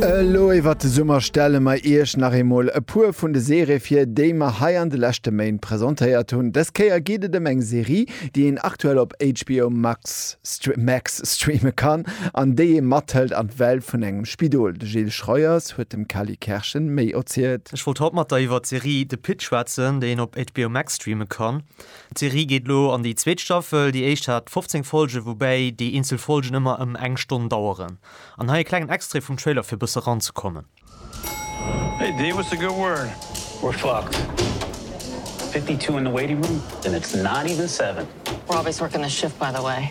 Elo iwwert de Summer stelle mer Iech nach eemol e puer vun de Serië vir, déi mer hei an de leschte Méint presentéiert hunn. Dës Kéier geet et ëm eng Serie, déi een aktuell op HBO Max Max streame kann an déi ee mathëlt an d'Welt vun engem Spidol. De Gilles Schroyers huet dem Kelly Kerschen méi erzielt. Ech wollt haut mat der iwwert d'Serie The Pitt schwätzen, déi een op HBO Max streame kann. D'Serie geet elo an déi zweet Staffel. Déi éischt hat 15 Folgen, woubäi déi eenzel Folgen ëmmer ëm eng Stonn daueren. An hei e klengen Extrait vum Trailer fir bësse ran ze kommen. Hey Dave, what's the good word? We're fucked. Fifty two in the waiting room and it's not even seven. Robbie's working the shift by the way.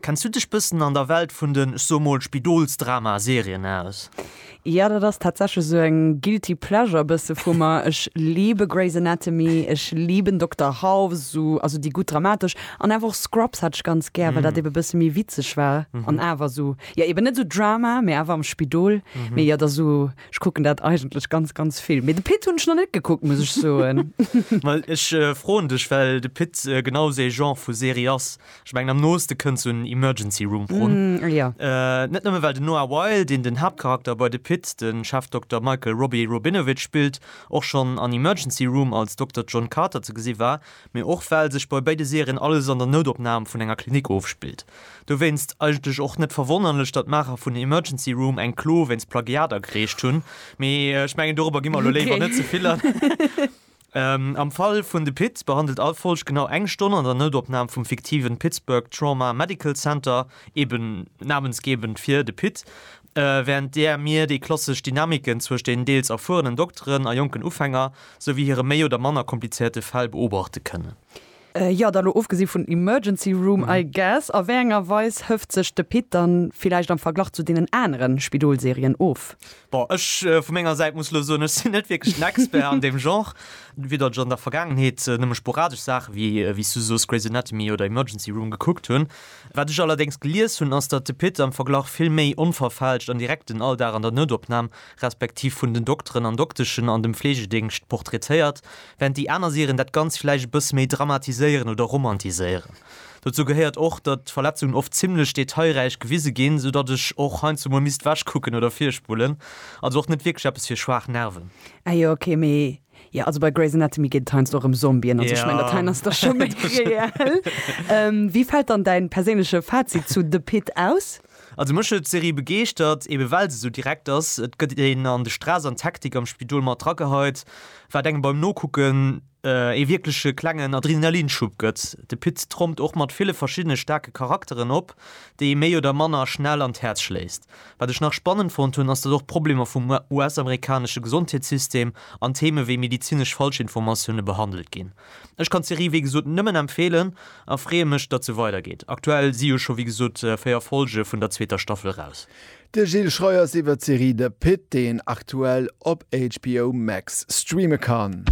Kenns du dech bëssen an der Welt vun den, ech soe mol, Spidolsdrama-Serien aus? Jo, dat ass tatsächlech esou eng guilty pleasure bësse vu mer. Ech liebe Grey's Anatomy, ech liben Dokter House, also déi gutt dramatesch, an awer och Scrubs hat ech ganz gär, well dat ebe bësse méi witzeg war an awer esou, jo eben net esou Drama, mee awer am Spidol. Mee jo, dat ass esou, ech kucken dat eigentlech ganz, ganz vill. Mee de Pitt hunn ech nach net gekuckt, muss ech soen. Well ech froen dech, well de Pitt genau esou ee Genre vu Serie ass, Ech mengen am nooste kënnt sou en Emergency Room run. Mm, jo. Net nëmme well den Noah Wyle, deen den Haaptcharakter bei The Pitt, de Chefdokter Michael Robbie Robinovitch spillt, och schonn an Emergency Room als Dokter John Carter ze gesi war, mee och well sech bei béide Serien alles an der Noutopnam vun enger Klinik ofspillt. Dowéinst eigentlech och net verwonnerlech, datt d'Maacher vun Emergency Room eng Klo wéinst Plagiat agereecht hunn, mee ech mengen dorobber gi mer elo léiwer net ze vill an. Am Fall vun de Pit behandelt all Folg genau eng Stonn an der Noutopnam vum fiktiven Pittsburgh Trauma Medical Center, eben namensgebend fir de Pit, wärend där mir déi klassesch Dynamiken zwëscht den deels erfuerenen Dokteren a jonken Ufänger, souwéi hire méi oder manner komplizéierte Fäll beobachte kënnen. Jo, da lo ofgesi vun Emergency Room, I guess. A wéi enger Weis hëft sech de Pit dann villäicht am Verglach zu deenen anere Spidol-Serien of? Bon, ech vu menger Säit muss lo soen, ech sinn net wierklech den Expert an deem Genre. Widder ech an der Vergaangenheet nëmme sporadesch Saache wéi, wéi s du soos, Grey's Anatomy oder Emergency Room gekuckt hunn. Wat ech allerdéngs gelies hunn, ass datt de Pit am Verglach vill méi onverfälscht an direkt den Alldag an der Noutopnam, respektiv vun den Dokteren an Dokteschen an dem Fleegedéngscht portraitéiert, Während déi aner Serien dat Ganzt vläicht e bësse méi dramatiséieren oder romantiséieren. Dozou gehéiert och, datt d'Verletzungen oft zimmlech detailräich gewise ginn, sou datt ech och heiansdo mol misst ewech kucken oder virspullen. Also och net wierklech eppes fir schwaach Nerven. Ah jo, ok, mee jo, also bei Grey's Anatomy geet et heiansdo och ëm Zombien, also ech mengen dat heien ass da scho méi reell. Wéi fält dann däin perséinleche Fazit zu The Pitt aus? Also mech huet d'Serie begeeschtert, eben well se sou direkt ass. Et gëtt een an de Stress an d'Hektik am Spidol mat rageheit, wat engem beim Nokucken ee wierkleche klengen Adrenalinschub gëtt. De Pit trompt och mat ville verschiddene staarke Charakteren op, déi ee méi oder manner schnell an d'Häerz schléisst. Wat ech nach spannend fonnt hunn, ass datt och d'Problemer vum US-amerikanesche Gesondheetssystem an Theme wéi medezinesch Falschinformatioune behandelt ginn. Ech kann d'Serie wéi gesot nëmmen empfeelen a freeë mech datt se weider geet. Aktuell si jo scho wéi gesot 4 Folge vun der zweeter Staffel raus. De Gilles Schreiers iwwer d'Serie The Pitt, déi een aktuell op HBO Max streame kann.